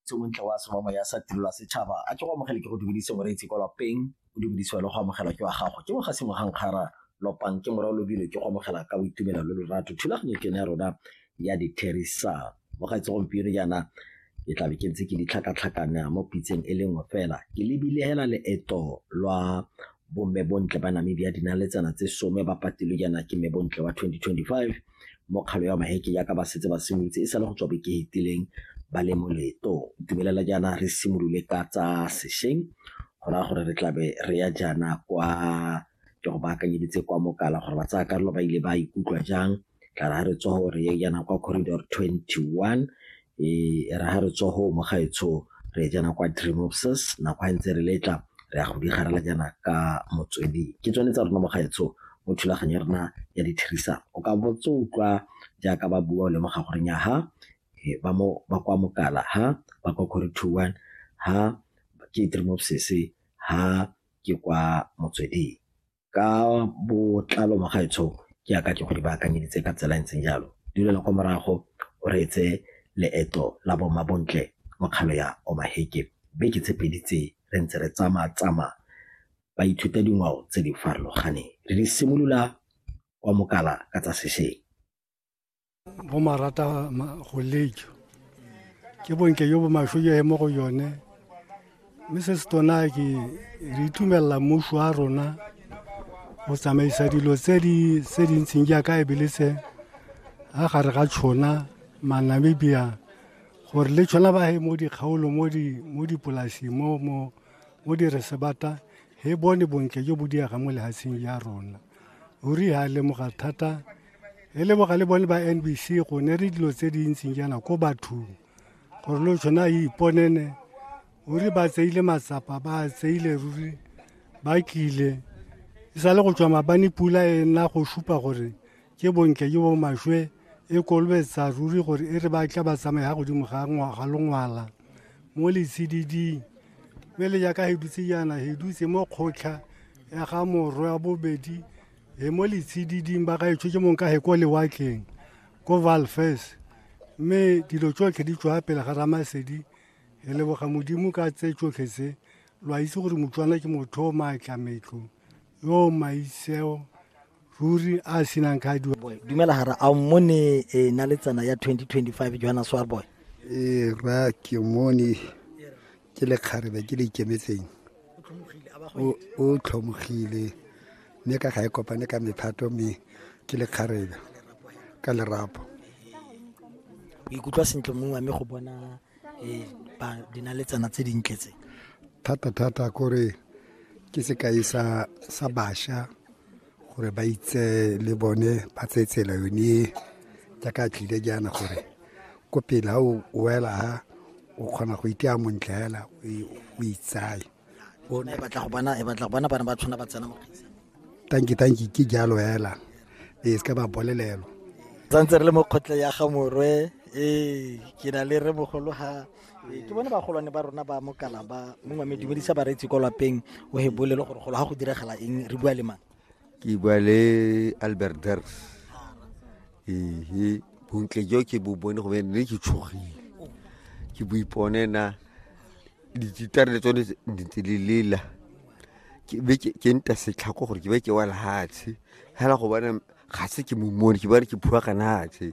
tse bontle wa semamo ya sa tirelo ya setšhaba a ke go amogele ke go dumedise moreetsi kwa lapeng o dumedisiwa le go amogela ke wa gago ke moga sengwe ga nkgara lopang ke morao lobile ke go amogela ka boitumelo le lorato thulaganyo ke ne ya rona ya ditherisan mogaetse gompieno jaana ke tla be ke ntse ke ditlhakatlhakana mo pitseng e le nngwe fela ke lebile hela leeto lwa bomme bontle ba namibia dinaletsana tse some ba patilwe jaana ke mme bontle wa 2025 mo kgalo ya maheke jaaka ba setse ba simolotse e sale go tswa beke fetileng ba le mo leetong itumelela jaana re simolole ka tsa sešweng go raya gore re tlabe re ya jaana kwa ke go baakanyeditse kwa mokala gore ba tsaya karolo ba ile ba ikutlwa jang tla re ga re tswa gore ye jaana kwa corridor 21 e ra ha re tswa ho mo gaetsho re jana kwa dream of sis nako ha ntse re letla re ya go di garela jana ka motswedi ke tsone tsa rona mo gaetsho mo thulaganyo ya rona ya dithirisano o ka botse utlwa jaaka ba bua o lemoga gore nya ha ba mo ba kwa mokala ha ba kwa kore two one ha ke dream of sis ha ke kwa motsweding ka botlalo mo gaetsho ke yaka ke go di baakanyeditse ka tsela e ntseng jalo di lela kwa morago o reetse leeto la bomabontle mo kgalo ya omaheke beke tse pedi tse re ntse re tsamaya tsamaya ba ithuta dingwao tse di farologaneng re di simolola kwa mokala ka tsa sešeng bo marata go lejo ke bonke yo bo masho yo he mo go yone mme se se tona ke re itumelela mmuso wa rona go tsamaisa dilo tse di tse di ntseng jaaka e bele se a gare ga tšhona manamibia gore le tšhona ba he mo dikgaolo mo di mo dipolasing mo mo mo di resebata he bone bontle jo bo diega mo lehatsheng ya rona ruri ha lemoga thata le leboga le bone ba nbc go ne re dilo tse di ntseng jaana ko bathong gore lo tshwana a iponene o re ba tseile matsapa ba tseile ruri ba tlile e sa le go tswa mabane pula e nna go supa gore ke bontle jo bo maswe e kolobetsa ruri gore e re ba tla ba tsamaya ga godimo ga ngwaga longwala mo letshididing mme le jaaka he dutse jaana he dutse mo kgotlha ya ga morwe wa bobedi e mo letshididing ba gaetsho ke mong ka he ko lewatleng ko valfes mme dilo tsotlhe di tswa pele ga ramasedi re leboga modimo ka tse tsotlhe tse lo a itse gore motswana ke motho o maatla metlo yo maitseo ruri a senang ka diwa boy dumela hara a mmone e na le tsena ya 2025 johanna swarboy e ra ke mone ke lekgarebe ke le ikemetseng o tlhomogile mme ka ga e kopane ka mephato mme ke lekgarebe ka lerapo o ikutlwa sentle mongwe mme go bona eh, dinaletsana tse dintle tse thata-thata kore ke sekai sa basha gore ba itse le bone ba tseye tsela yone e jaaka tlile jaana gore ko pele ga o wela ha o kgona go itea montle fela o itsaye e batla go bona e batla go bona bana ba tshwana ba tsena mo tanki tanki ke jalo fela e se ka ba bolelelo tsantse re le mo kgotle ya ga morwe ee ke na le re mogolo ga ee, ke bone bagolwane ba rona ba mokala ba mongwe me dumedisa bareetsi kwa lapeng o he bolele gore golo ga go diragala eng re bua le mang ke bua le albert ders ee bontle jo ke bo bone go ne ke tshogile ke bo ipone na dititare le tsone ntse le lela ke nta setlhako gore ke be ke wa lehatshe fela go bona ga se ke momone ke bane ke phua ka natshe